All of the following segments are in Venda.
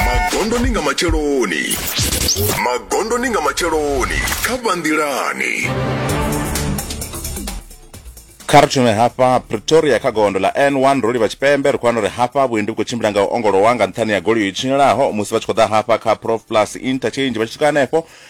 magondoni nga matsheloni magondoni nga matsheloni kha vhanḓilani kha ri thume hafha pretoria kha gondo ḽa n1 ro livha tshipembe ri khou wana uri hafha vhuendi vhu khou tshimbila nga u ongolowa nga nṱhani ya goloi yo tshinyalaho musi vha tshi khou ḓa hafha kha prof plus interchange vha tshi swika hanefho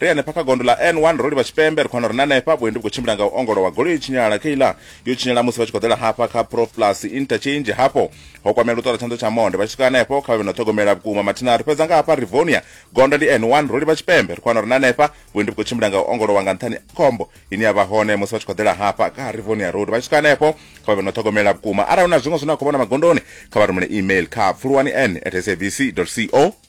Ri henefha kha gondo ḽa N1 ro livha tshipembe, ri khou wana uri na henefha vhuendi vhu khou tshimbila nga u ongolowa, goloi i tshinyala, kheiḽa yo tshinyala musi vha tshi khou ḓela hafha kha Prof Plus Interchange, hafho ho kwamea luṱo lwa tshanḓo tsha monde, vha tshi swika henefho kha vha vhe na u ṱhogomela vhukuma. Mathina ri fhedza nga hafha Rivonia, gondo ndi N1, ro livha tshipembe, ri khou wana uri na henefha vhuendi vhu khou tshimbila nga u ongolowa nga nṱhani ha khombo ine ya vha hone musi vha tshi khou ḓela hafha kha Rivonia Road, vha tshi swika henefho kha vha vhe na u ṱhogomela vhukuma. Arali hu na zwiṅwe zwine wa khou vhona magondoni, kha vha rumele email kha pfuluwani-n at sabc dot co.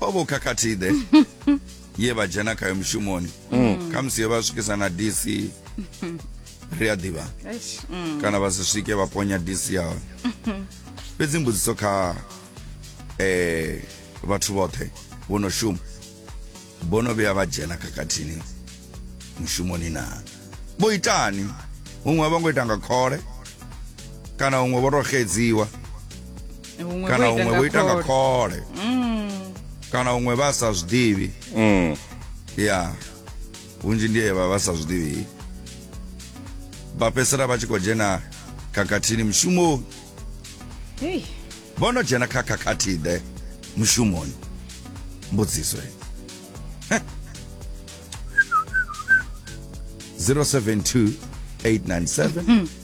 pavo khakhathi ḓe ye vha dzhena khayo mushumoni mm. khamusi ye vha swikisa na dc ri a ḓivha mm. kana vha si swike vha ponya dc ya hone fhedzi mbudziso kha eh vhathu vhoṱhe vho no shuma vho no vhuya vha dzhena khakhathini mushumoni na vho itani huṅwe vha ngo ita nga khole kana huṅwe vho to xedziwa Huṅwe kana vho ita huṅwe nga vho ita nga khole. khole Mm. kana huṅwe vha sa zwi ḓivhi Mm. ya hunzhi ndi evha vha sa zwi ḓivhi vha fhedzisela vha tshi khou dzhena khakhathini mushumoni Hey. vho no dzhena kha khakhathi-ḓe mushumoni mbudziso heyi. Heh. 072 897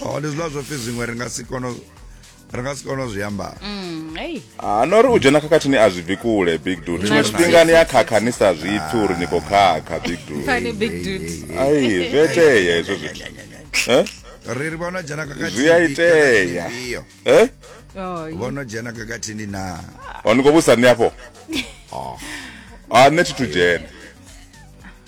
oh ndi zwiḽa zwo pfi zwiṅwe ri nga si kono ri nga si kono zwi amba mm, ah, no ri u dzhena khakhathini a zwi bvi kule big dude tshiṅwe tshifhinga ni ya khakha ni sa zwi pfi uri ni khou khakha big dude ai zwi itea hezwo zwithu eh? ri ri vhona dzhena khakhathini zwi a itea eh? vhono dzhena khakhathini na oh, ni khou vhusa ni afho a ah, nṋe thi thu dzhena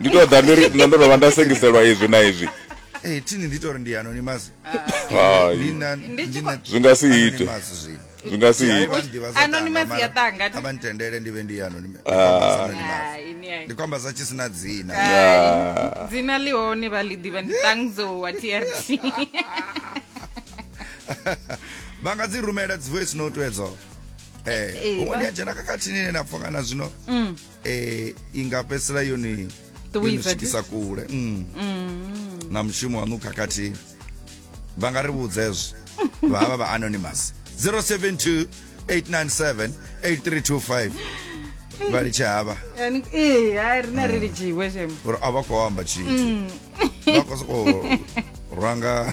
ndi to ḓa ndiri nṋe ndo no vha nda sengiselwa izwi na izwi eh thini ndi to ri ndi anonymous hai ndi na Ndi tshi khou- zwi nga si ite zwi nga si ite Anonymous ya tanga. abantendele ndi vhe ndi anonymous Hai, ni hai. ndi kwamba za tshi sina dzina Ah, dzina ḽi hone vha ḽi ḓivha ndi tangzo wa trc vha nga dzi rumela dzi voice note edzo Eh, Eh, huṅwe vha- ndi a dzhena khakhathini ine na pfha kana zwino eh i nga fhedzisela yone yo Ṱuwisa ni swikisa kule mm. na mushumo waṋu khakhathi vha nga ri vhudza hezwo vha havha vha anonymous 072 897 8325 vha litshe havha Yani, ee hai rine ri lidziwe shema uri a vha khou amba tshithu vha khou sokou ranga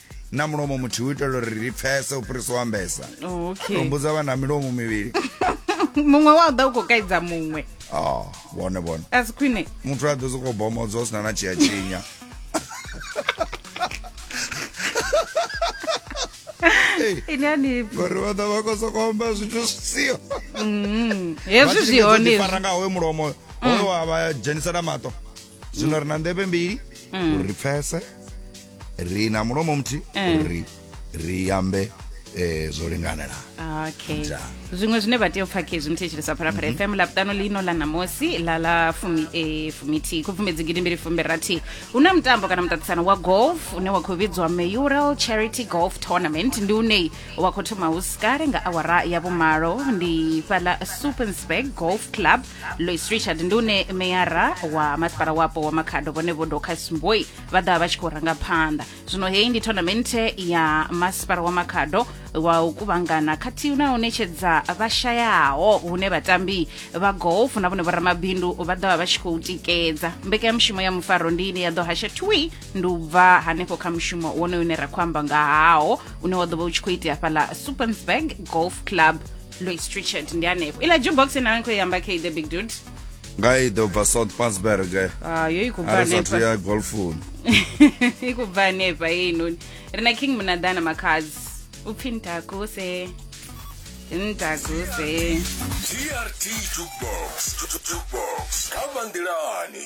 na mulomo muthihi u itela uri ri pfese u fhirisa u ambesa Oh, okay. humbudza vha na milomo mivhili muṅwe wa u ḓa u khou kaidza muṅwe Ah, vhone vhone a si khwine muthu a ḓo sokou bomodzo hu sina na tshia tshinya ine ani ngori vha ḓa vha khou sokou amba zwithu zwi siho hezwi zwi hone hezwi. fara nga hoyo mulomo hoyo wa vha dzhenisela maṱo zwino ri na nḓevhe mbili mm. uri ri pfese ri na mulomo muthihi eh. uri ri ambe eh zwo linganela okay zwiṅwe zwine vha tea u pfha khezwi muthetshelesa phalaphala mm -hmm. fm lapuṱano lino la namosi la la fumi e fumithi khubvumedzi gidi mbili fumi rathi hu na mutambo kana muṱaṱisano wa golf une wa khou vhidzwa mayoral charity golf tournament ndi une wa khou thoma hu sikale nga awara ya vhumalo ndi fhala supernsburg golf club lois richard ndi une meyara wa masipala wapo wa makhado vhone vho docas mboi vha ḓa vha tshi khou ranga phanḓa zwino heyi ndi tournamente ya masipala wa makhado wa u kuvhangana khathihi na u ṋetshedza vhashayaho hune vhatambi vha golf na vhone vhoramabindu vha ḓovha vha tshi khou tikedza mbekanyamushumo ya mufaro ndi ine ya ḓo hasha twi ndi u bva hanefho kha mushumo wonoyo une ra khou amba nga hawo une wa ḓo vha u tshi khou itea fhaḽa supernsburg golf club louis trichard ndi hanefho ila jukebox nayo ni khou i amba kha the big dude nga i ḓo bva south pasberg ah yo i khou bva a ri sathu hanefha ya golfuni i khou bva hanefha heinoni ri na king munaḓana makhazi u pfi ntakuse ntakuse DRT Jukebox. Jukebox. Kama Ndilani.